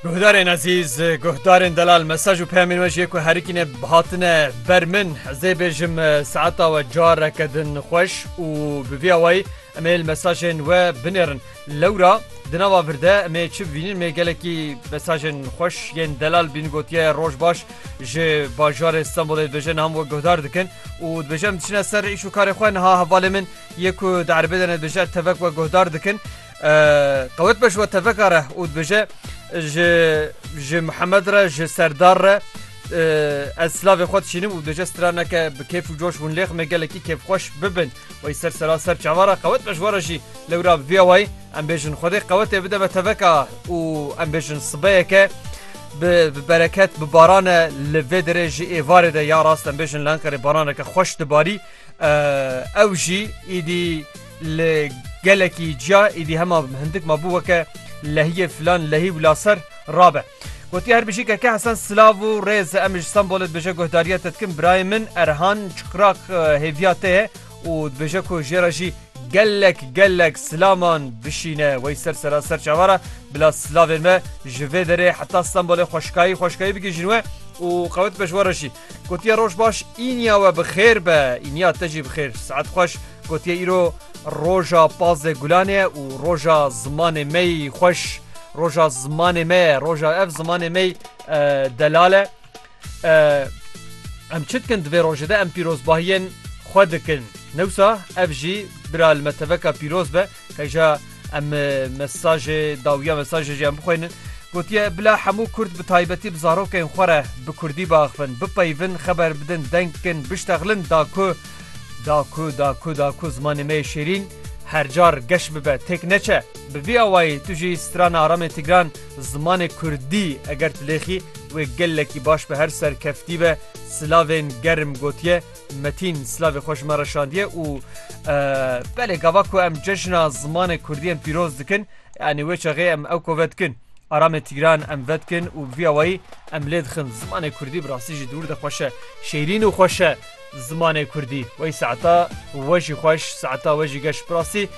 Guhdarên ezîz, guhdarên delal mesaj û peyamên we ji yê ku herikîne hatine ber min. Ez dê bêjim saeta we careke din xweş û bi vî awayî em ê li mesajên we binêrin. Lewra di nava vir de em ê çi bivînin mê gelekî mesajên xweş yên delal bîn gotiye roj baş ji bajarê Stenbolê dibêje niha min we guhdar dikin û dibêje em diçine ser îş û karê xwe niha hevalê min yê ku di erebê de ne dibêje tevek we guhdar dikin. Qewet be ji we teveka re û dibêje ji ji Mihemed re ji serdar re ez silavê xwe dişînim û dibêje straneke bi kêf û coş hûn lêxmê gelekî kêfxweş bibin wey ser sera ser çava re qewet be ji we re jî lewra bibiya wayî em bêjin xwedê qewetê bide me teveka û em bêjin sibeyeke bi bi bereket bi barane li vê derê ji êvarê de ya rast em bêjin li Enqerê baraneke xweş dibarî ew jî îdî Li gelekî ciya êdî hema hindik ma bû weke lehiyê filan lehî wila ser rabe. Gotiye her bijîkeke hesen silav û rêz em ji Stenbolê dibêje guhdariya te dikim birayê min Erhan Çiqrak hêviya te ye û dibêje ku jê re jî gelek gelek silaman bişîne wey ser sera ser çavara bila silavên me ji vê derê heta Stenbolê xweşkayî xweşkayî bigihîjin we û qewet be ji we re jî. Gotiye roj baş îniya we bi xêr be îniya te jî bi xêr saet xweş Gotiye îro roja pazdeh gulan e û roja zimanê me yî xweş roja zimanê me ye roja ev zimanê me yî delal e em çi dikin di vê rojê de em pîrozbahiyên xwe dikin newsa ev jî bira li me teveka pîroz be Heja em mesajê dawiya mesajê jî em bixweynin. Gotiye bila hemû Kurd bi taybetî bi zarokên xwe re bi Kurdî biaxivin, bipeyivin, xeber bidin, deng bikin, biştexlin da ku da ku da ku da ku zimanê me yê şêrîn her car geş bibe, têk neçe. Bi vî awayî tu jî strana aramê Tigran zimanê Kurdî eger tilêxî wê gelekî baş bi her serkeftî be silavên germ gotiye. Metîn silavê xwe ji me re şandiye û belê gava ku em cejna zimanê Kurdî em pîroz dikin yanî wê çaxê em ew kove dikin. Aramê Tîran em vedikin û bi vî awayî em lê dixin. Zimanê Kurdî bi rastî jî dûr de xweş e. Şêrîn û xweş e zimanê Kurdî. Wey saeta we jî xweş, saeta we jî geş. Bi rastî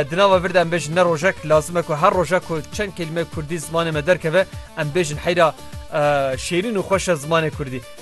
di nava vir de em bêjin ne rojek lazim e ku her rojek ku çend kelîme Kurdî zimanê me derkeve em bêjin heyra şêrîn û xweş e zimanê Kurdî.